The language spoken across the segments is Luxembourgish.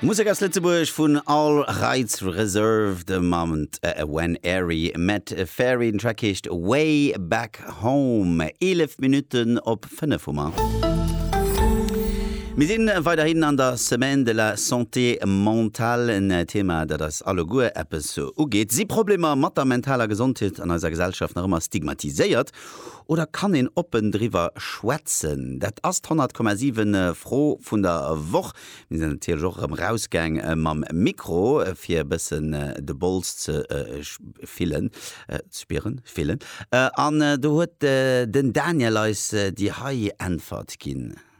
Musek aus Lëtzebuerg vun All Rights Reserved a mam When Airy Met Fairy. Den Track heescht Way Back Home. 11 Minutten op 5 hu mer. Mir sinn weiderhin an der Semaine de la Santé Mentale, en Thema dat eis alleguer eppes ugeet. Si Problemer mat der mentaler Gesondheet an eiser Gesellschaft nach ëmmer stigmatiséiert? Oder kann een oppen driwwer schwätzen? Dat ass d'Honnertkommasiwen Fro vun der Woch. Mir sinn natierlech och erëm rausgaang mam Mikro, fir e bëssen de Bols ze fillen, spieren, fillen. An do huet den Daniel eis déi hei Äntwert ginn.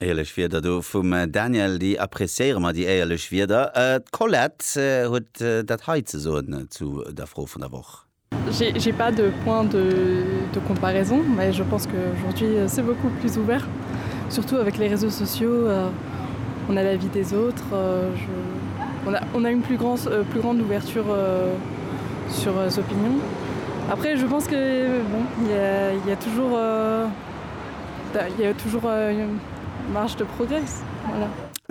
Éierlech Wierder do vum Daniel, déi appreciéiere mer, déi éierlech Wierder. D'Colette huet dat hei ze soen zu der Fro vun der Woch. J'ai pas de point de de comparaison mais je pense que aujourd'hui c'est beaucoup plus ouvert surtout avec les réseaux sociaux on a la vie des autres je on a on a une plus grand plus grande ouverture sur les opinions après je pense que bon il ya il ya toujours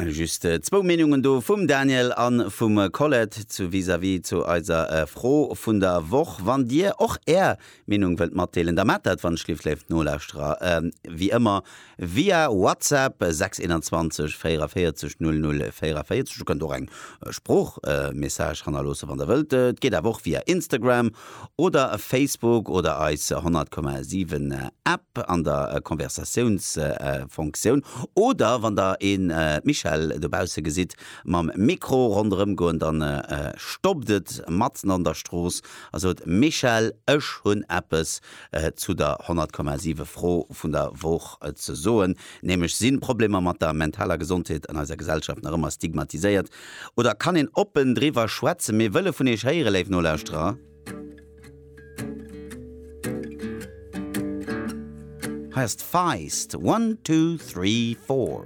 Just zwou Meenungen do vum Daniel a vum Colette zu vis-à-vis zu eiser Fro vun der Woch. Wann Dir och Är Meenung wëllt matdeelen, da maacht dat, wann ech lieft léif Nolauschterer, wéi ëmmer via WhatsApp 621 44 00 44. Dir kënnt och eng Sproochmessage hannerloossen, wann Der wëllt. Et geet awer och via Instagram Oder Facebook oder eis 100,7 App an der Konversatiounsfonktioun. Oder wann der een Michèle dobausse gesitt mam Mikro ronderëm goen, dann stoppt et matzen an der Strooss a sot, Michèle, ech hunn eppes zu der 100,7 Fro vun der Woch ze soen, nämlech, Sinn Problemer mat der mentaler Gesondheet an eiser Gesellschaft nach ëmmer stigmatiséiert? Oder kann een oppen driwwer schwätzen? Mir wëlle vun Iech héieren, léif Nolauschterer. Hei ass d'Feist, One, Two, Three, Four.